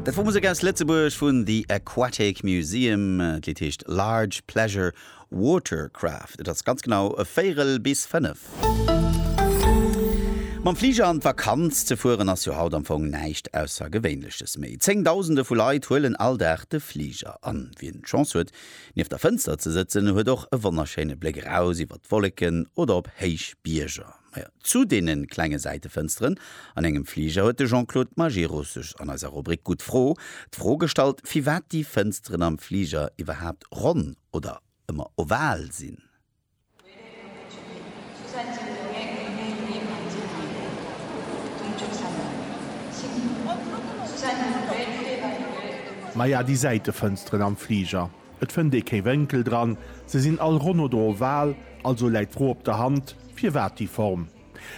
Dat wor Musek aus Lëtzebuerg vun The Aquatic Museum. D'Lidd heescht Large Pleasure Watercraft. Et ass ganz genau e Véirel bis fënnef. Mam Fliger an d'Vakanz ze fueren ass jo haut am Fong näischt Aussergewéinleches méi. Zéngdausende vu Leit huelen all Dag de Fliger. An wien d'Chance huet, nieft der Fënster ze sëtzen, huet och e wonnerschéine Bléck eraus iwwer d'Wolleken oder op héich Bierger. Majo, zu deene klenge Säitefënsteren an engem Fliger huet de Jean-Claude Majerus sech an eiser Rubrik Gutt Fro d'Fro gestallt, firwat déi Fënsteren am Fliger iwwerhaapt ronn oder ëmmer oval sinn. Maja, déi Säitefënsteren am Fliger. Et fënnt ee kee Wénkel dran, se sinn all ronn oder oval, also läit d'Fro op der Hand, firwat déi Form?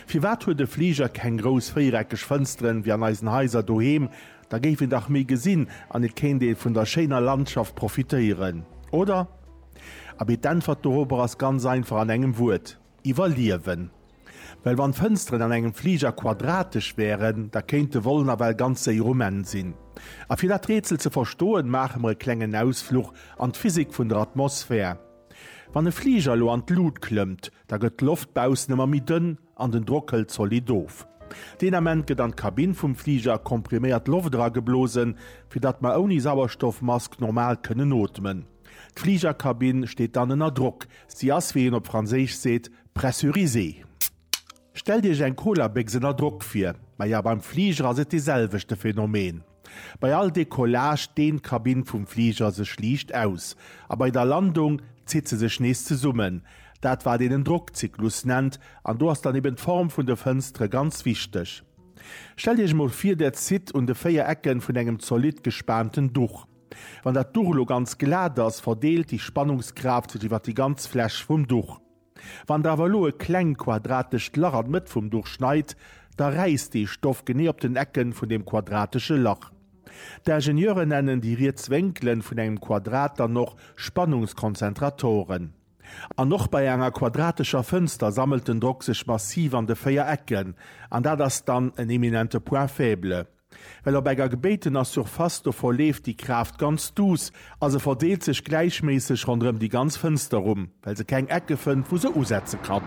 Firwat huet e Fliger keng grouss véiereckeg Fënsteren wéi an eisen Haiser doheem? Da géif een dach méi gesinn an et kéint ee vun der schéiner Landschaft profitéieren, oder? Abee, d'Äntwert dorobber ass ganz einfach an engem Wuert. Iwwerliewen. Well wann d'Fënsteren an engem Fliger quadratesch wären, da kéint de Vol nawell ganz séier um Enn sinn. A fir dat Rätsel ze verstoen, maache mer e klengen Ausfluch an d'Physik vun der Atmosphär. Wann e Fliger elo an d'Lut klëmmt, da gëtt d'Loft baussen ëmmer méi dënn an den Drock hëlt zolidd of. Deen Ament gëtt an d'Kabinn vum Fliger kompriméiert Loft erageblosen, fir datt mer ouni Sauerstoffmask normal kënnen ootmen. D'Fligerkabinn steet dann ënner Drock, si ass, wéi een op Franséisch seet, pressurisée. Stellt Iech eng Colabécks ënner Drock vir. Maja, beim Fliger ass et dee selwechte Phänomen. Bei all Decollage deent d'Kabinn vum Fliger sech liicht aus, a bei der Landung zitt se sech nees zesummen, dat wat een en Drockzyklus nennt, an do ass dann eben d'Form vun de Fënstere ganz wichteg. Stellt Iech emol vir, Där zitt un de 4 Ecke vun engem zolidd gespaanten Duch. Wann dat Duch elo ganz glat ass, verdeelt déi Spannungskraaft sech iwwer déi ganz Fläch vum Duch. Wann der awer elo e kleng quadratescht Lach an d'Mëtt vum Duch schneit, da räisst dee Stoff genee op den Ecken vun deem quadratesche Lach. D'Ingenieuren nennen déi riets Wénkelen vun engem Quadrat dann och Spannungskonzentratoren. An och bei enger quadratescher Fënster sammelt den Drock sech massiv an de 4 Ecken, an dat ass dann en eminente Point faible. Well op enger gebéitener Surface do verleeft déi Kraaft ganz duuss a se verdeelt sech gläichméisseg ronderëm déi ganz Fënster rum, well se keng Ecke fënnt, wou se usetze kann.